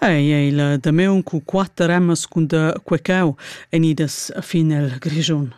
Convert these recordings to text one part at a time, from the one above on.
Ei ei la damaun cu quatter emmas cun da quecau enidas fin el Grischun.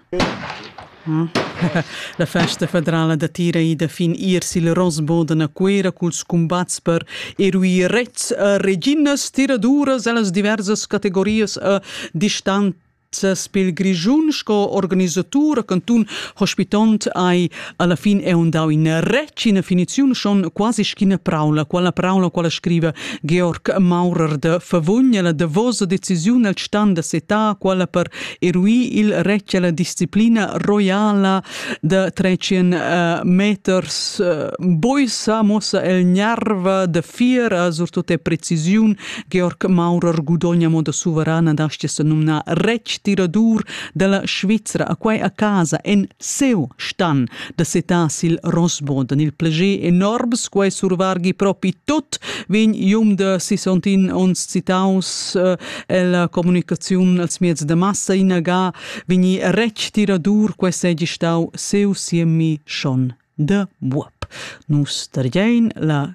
La festa federala datira ida fin iers il Rosboden a Cuera culs cumbats per eruir rets e reginas tiraduras ellas diversas categorias e distan Ses pel grischun sco organisatur a cantun hospitont ai alla fin è un dau in retg ina finiziun schon quasi schina praula quella praula quella scriva Georg Maurer de Favugn la davosa decisiun al stand da seta quella per eruir il retg alla disciplina royala de 300 uh, meters uh, boisa mossa el nerva de fiera surtut e precisiun Georg Maurer gudogna mo da suverana da sta numna retg tiradur dalla Svizra a quai a casa en seu stan da setar sil Rosboden. Il plege enorms quai survargi propi tot vegn ium de 61 ons citaus eh, el comunicaziun als mieds de massa inaga vegni retg tiradur quai segi stau seu siemi schon de buob. Nus tergein la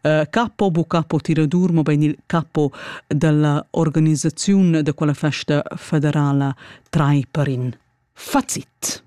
Uh, capo bu capo tiradur mobein il capo dalla organisaziun da quella festa federala Traiperin. Fazit.